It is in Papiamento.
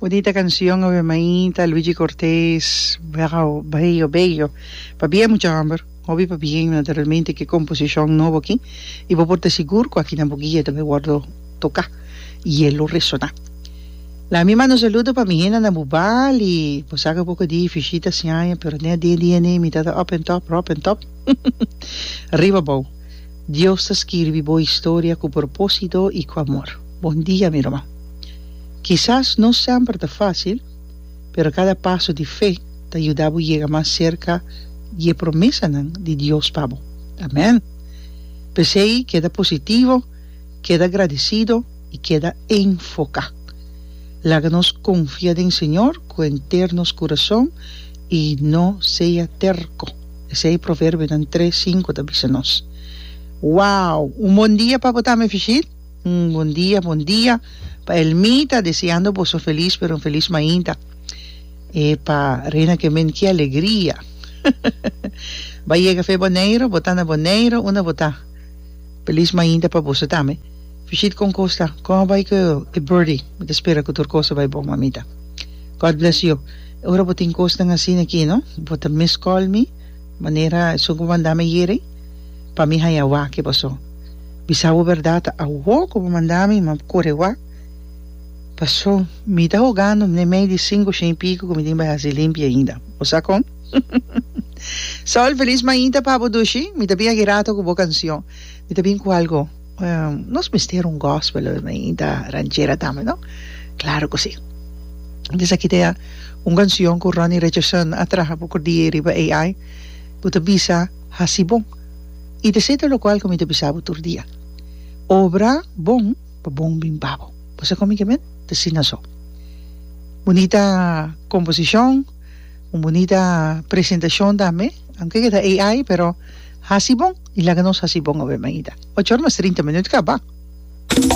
Bonita cancion awe maita Luigi Cortes Bravo bello bello pa bien mucha homber hopi pa bien na ta realmente ki composicion nobo aki y bo por ta sigur cu aki na bo guia tambe wordo toca y e lo resona laat mi manda un saludo pa mi henda na bubal y bo sa cu poco di vishita siaña pero den a den dia ne mi ta ta up en top rop en top riba bo. Dios ta skirbi bo historia ku propósito i ku amor. Bon dia, mi ruman. Kisas no semper ta fásil, pero kada paso di fe ta yuda bo yega mas serka di e promesanan di Dios pa bo. Amèn! P'esei, keda positivo, keda gradesido i keda enfoká. Laga nos konfia den Señor ku henter nos kurason i no sea terko. Esei proverbionan tres sinku ta bisa nos. Wow! Un bon dia pa bo tami Efishit? Un bon dia, bon dia pa Elmita, deseando boso un felis pero un felis mainta. E pa Reina Kemen ki alegria! Ba yega fe Boneiro, bo ta na Boneiro, unda bo ta? Felis mainta pa boso tami. Bishit kon kos ta? Kon a bai ku e birdie? Mi ta spera ku tur kos a bai bon mamita. God bless you. E ora bo tin kosnan asina aki no bo ta miss call mi manera esun ku bo manda mi ayere pa mi haña wak ke boso. Bisa bo berdad awo ku bo manda mi ma kore wak paso mi ta hogando ne mei di sinku shen i piku ku mi tin bai hasi limpi ainda. Bo sa kon? Sol, feliz mañita pa bo dushi. Mi ta bin aki rato ku bo kansion. Mi ta bin ku algo. Nos mester un gospel i ta ranchera tambe no? Claro cu si. Entonces aki ta un cancion cu Ronnie Richardson a traha poco die riba AI cu ta bisa Haci bon. I ta esey ta locual cu mi ta bisa bo tur dia. Obra bon pa bon bin pa bo. Bo sa con mi ke men? Ta asina so. Bunita composicion, un bunita presentacion tambe, aunke ke ta AI pero haci bon. I laga nos hasi bon obe mainta. Ocho ora mas trinta minut kaba.